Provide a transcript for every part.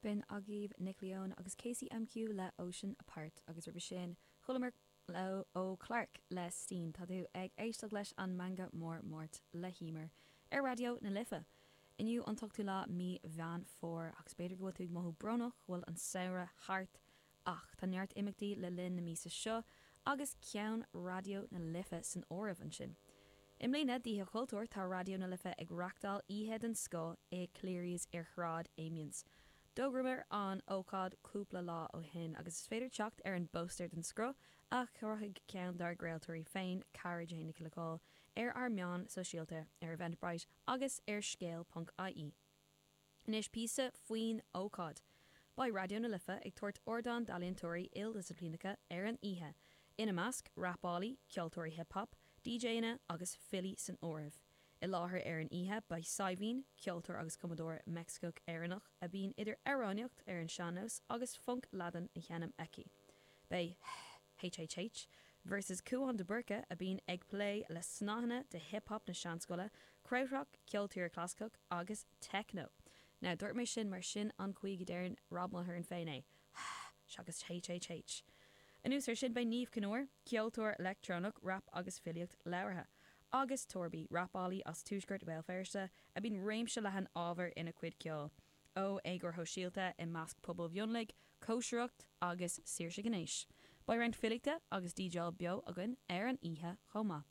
B'in agaibh Nick Leon agus Casey MQ le Ocean Apart agus roimhe sin chualamar ó Clark le Steen. Tá tú ag éisteacht leis an Meangadh Mór Máirt le hEímear ar Raidió na Life. Inniu an t-ochtú lá mí Mheán Fómhair agus b'fhéidir go bhfuil tú ag mothú brónach go bhfuil an samhradh thart, Ach tá neart imeachtaí le linn na míosa seo agus ceann Raidió na Life san áireamh ansin. I mbliana d'Oíche Chultúir tá Raidió na Life ag reachtáil oíche den scoth i Cleary's ar Shráid Amiens. D'fhógramar an ócáid cúpla lá ó shin agus is féidir teacht ar an bpóstaer den scoth a chruthaigh ceann dár gcraoltóirí féin, Cara Jane Nic Locaill, ar ár meáin sóisialta, ar Eventbrite agus ar scéal.ie. Anois píosa faoin ócáid. Beidh Raidió na Life ag tabhairt ardán d'ealaíontóirí ildisciplíneacha ar an oíche, ina measc, rapálaí, ceoltóirí hip hop, DJanna agus filí san áireamh. I láthair ar an oíche beidh Saidhbhín, ceoltóir agus cumadóir Meicsicigh-Éireannach a mbíonn idir amhránaíocht ar an sean-nós agus func Laidin á seinm aici. Beidh HHH versus Cúán de Búrca, a bhíonn ag plé le snáthanna de hip hop na seanscoile, krautrock, ceol tíre clasaiceach agus techno. Now, dúirt mé sin mar sin an chaoi go deireann Rob Mulhern féin é, hh, seachas HHH. Anuas ar sin, beidh Niamh Chinn Óir, ceoltóir leictreonach, rap agus filíocht labhartha, agus Torby, rapálaí as tuaisceart Bhéal Feirste, a bíonn réimse leathan ábhar ina chuid ceoil, ó éagóir shóisialta i measc pobail mhionlaigh, cóisireacht agus saoirse ghnéis. Beidh roinnt filíochta agus DJáil beo againn ar an oíche chomh maith.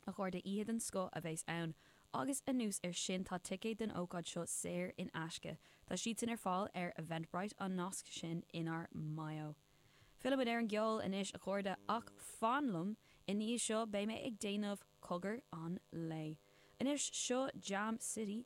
A chairde, oíche den scoth a bheas ann agus anuas ar sin tá ticéid don ócáid seo saor in aisce, tá siadsan ar fáil ar Eventbrite, an nasc sin inár mBio. Fillimid ar an gceol anois a chairde, ach fan liom, i ndiaidh seo beidh mé ag déanamh cogar an lae. Anois seo Jam City.